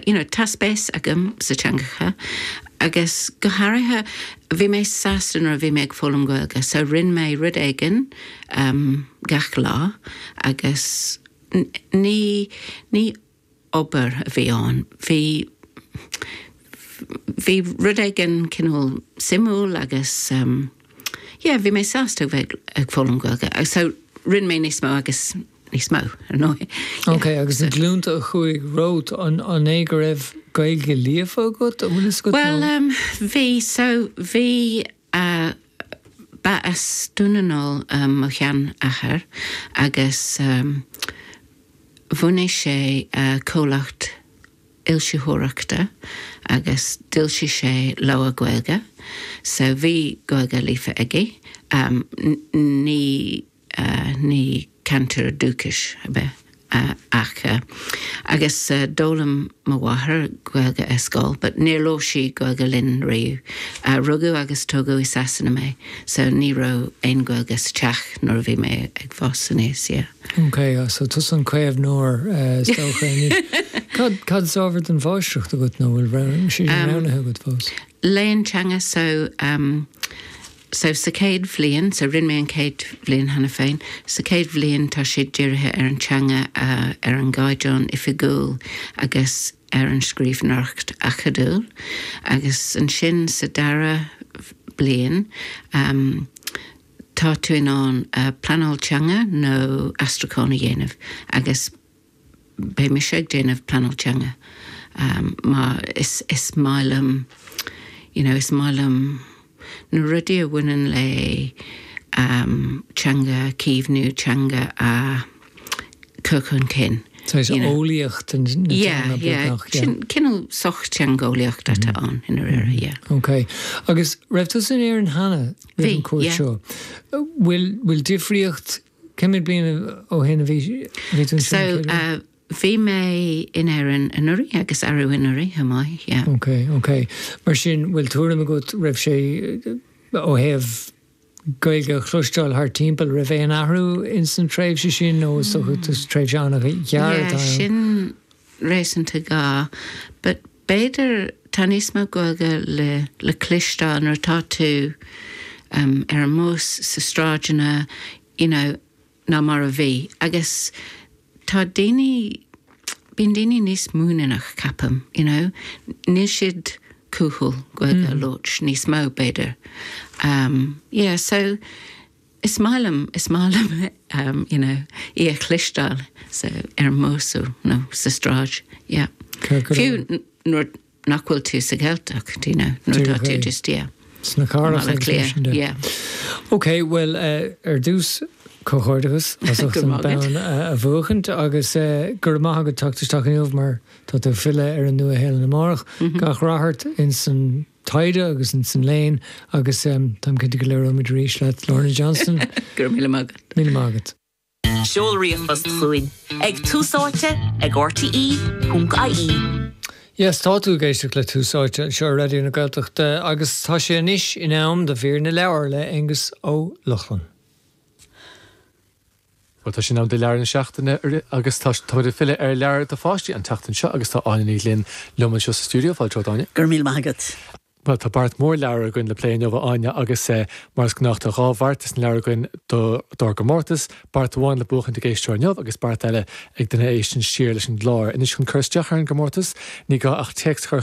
you know tá spéis agam sna teangacha agus go háirithe bhí mé sásta nuair a bhí mé ag foghlaim Gaeilge so rinne mé rud éigin ehm gach lá agus ní ní obair a bhí ann bhí bhí rud éigin cineál suimiúil agus ehm yeah bhí mé sásta bheith ag foghlaim Gaeilge so rinne mé níos mó agus Níos mó, ar ndóigh. Ok, agus na glúnta a chuaigh romhat, an é go raibh Gaeilge líofa acu, an bhfuil fhios agat? Bhuel, bhí, so bhí, ba as Dún na nGall mo sheanathair agus bhunaigh sé comhlacht fhoilsitheoireachta agus d'fhoilsigh sé leabhair Ghaeilge, so bhí Gaeilge líofa aige. Ní. ní cainteoir dúchais ab ea é ach agus d'fhoghlaim mo mháthair Gaeilge ar scoil but níor labhair sí Gaeilge linn riamh. Rugadh agus tógadh i Sasana mé so ní raibh aon Gaeilge sa teach nuair a bhí mé ag fás aníos, yeah. OK, so tusa an caomhnóir is dócha anois. Cad is ábhar don mháistreacht agat nó bhfuil sé sin roghnaithe agat fós? Léann teanga so So sa chéad bhliain, so rinne mé an chéad bhliain cheana féin, sa chéad bhliain tá sé dírithe ar an teanga, ar an gcaighdeán oifigiúil agus ar an scríbhneoireacht acadúil agus ansin sa dara bliain tá tú in ann pleanáil teanga nó aistriúchán a dhéanamh agus beidh mise ag déanamh pleanáil teanga mar is is maith liom you know is maith liom na rudaí a bhaineann le teanga a chaomhnú, teanga a chur chun cinn. So is eolaíocht na teanga beagnach? Yeah, yeah, sin cineál sochtheangeolaíocht atá ann i ndáiríre, yeah. Ok, agus raibh tusa in Éirinn cheana roimh an chuairt seo? Bhí, yeah. Bhfuil difríocht Cé mhéad bliain ó shin a bhí tú ansin? So bhí mé in Éirinn anuraidh agus arú anuraidh chomh maith, yeah. Ok, ok. Mar sin, bhfuil tuairim agat, raibh sé, ó thaobh Gaeilge a chloisteáil thart timpeall, raibh aon athrú in san tréimhse sin nó is dócha, tréimhse an-ghearr atá ann? Yeah, sin. réasúnta gearr, but b'fhéidir tá níos mó Gaeilge le le cloisteáil nuair atá tú em ar an mbus, sna sráideanna, you know ná mar a bhí agus tá daoine bíonn daoine níos muiníneach ceapaim, you know níl siad cúthail Gaeilge a labhairt níos mó b'fhéidir. Em yeah so Is maith liom, is maith liom you know, í a chloisteáil sa, ar an mbus nó sa tsráid, yeah. Cé go raibh. Fiú nuair nach bhfuil tú sa Ghaeltacht, do you know, nuair atá tú just, yeah. Sna carr is ag sibh sin, yeah. Ok, bhuel, ar dtús, comhghairdeachas as ucht an bonn a bhuachaint agus go raibh maith agat as teacht isteach inniu mar tá tú ag filleadh ar an Nua-Shéalainn amárach. Gach rath ort ins an. taighde agus insan léann agus táim cinnte go labhróimid arís leat Lorna Johnston. Go raibh míle maith agat. Míle maith agat. Seol ríomhphost chugainn ag Tús Áite ag RTÉ.ie. Yes, tá tú ag éisteacht le Tús Áite anseo ar Raidió na Gaeltachta agus tá sé anois in am do Mhír na Leabhar le Aonghus Ó Lochlainn. Bhuel, tá sé in am do leabhar na seachtaine agus tá muid ag filleadh ar leabhair do pháistí an tseachtain seo agus tá Áine Ní Ghlinn liom anseo sa stiúideo. Fáilte romhat, Áine. Go raibh míle maith agat. Bhuel, tá beart mór leabhar againn le plé inniu, a Áine, agus mar is gnách tá dhá bheart de na leabhair againn dár gcomórtas, beart amháin le buachaint ag éisteoir inniu agus beart eile ag duine a éisteann siar leis an gclár. Anois chun cur isteach ar an gcomórtas, ní gá ach téacs a chur